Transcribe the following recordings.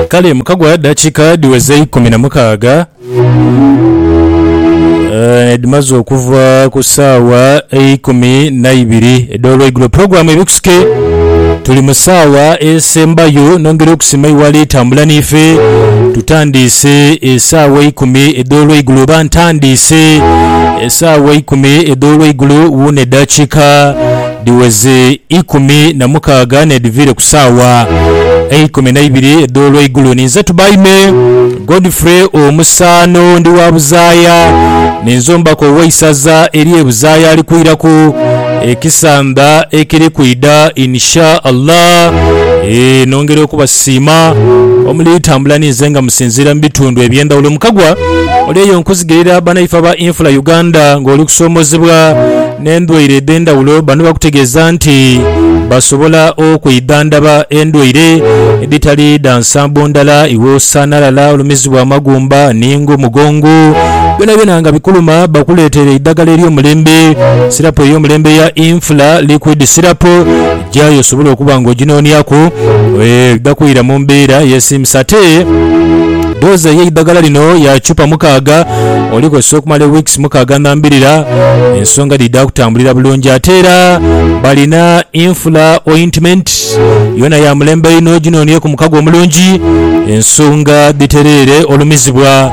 Kale mukagwa dakiika dhiweze eikumi na mukaaga eh, edhimaze okuva ku saawa eikumi naibiri edh'olweigulo. Pulogulaamu Ebikusike tuli mu saawa esembayo. Nongera okusima iwali tambula niife. Tutandiise esaawa eikumi edh'olweigulo oba ntandiise esaawa eikumi edh'olweigulo wuuno edakiika Dhiweze ikumi na mukaaga n'edhiviire ku saawa eikumi na ibiri edh'olweigulo. Ninze Tubaime Godfrey Omusaano, ndi wa Buzaaya. Ninze omubaka ow'eisaza ery'e Buzaaya alikwiraku ekisamba ekiri kwidha Insha Allah. Eeh, nongera okubasiima omuli tambula ninze nga musinziira mu bitundu eby'endhawulo. Mukagwa oli eyo nkuzigirira banaife aba Infula Uganda ng'oli kusoomoozebwa. n'endwaire edh'endhaghulo. Bano bakutegeeza nti basobola okwidhandhaba endwaire edhitali dha nsambo ndala, iwe osaana lala olumizibwa amagumba ni ng'omugongo byonabyona nga bikuluma bakuleetere eidhagala ery'omulembe. Sirapu ey'omulembe eya Infla Liquid Syrup. Gyayo osobole okuba ng'oginooniaku oidha kwira mu mbeera eyesiimisa. Ate doozi ey'eidhagala lino ya chupa mukaaga olikozesa okumala wiikisi mukaaga ndhambirira. Ensonga dhidha kutambulira bulungi. Ate era balina Infla Ointment, yoona ya mulembe inho, ginoonieku mukago omulungi ensonga dhitereere olumizibwa.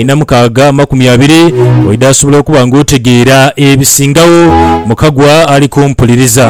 Inha mukaaga amakumi abiri, oidha asobola okuba ng'otegeera ebisingagho. Mukagwa ali kumpuliriza.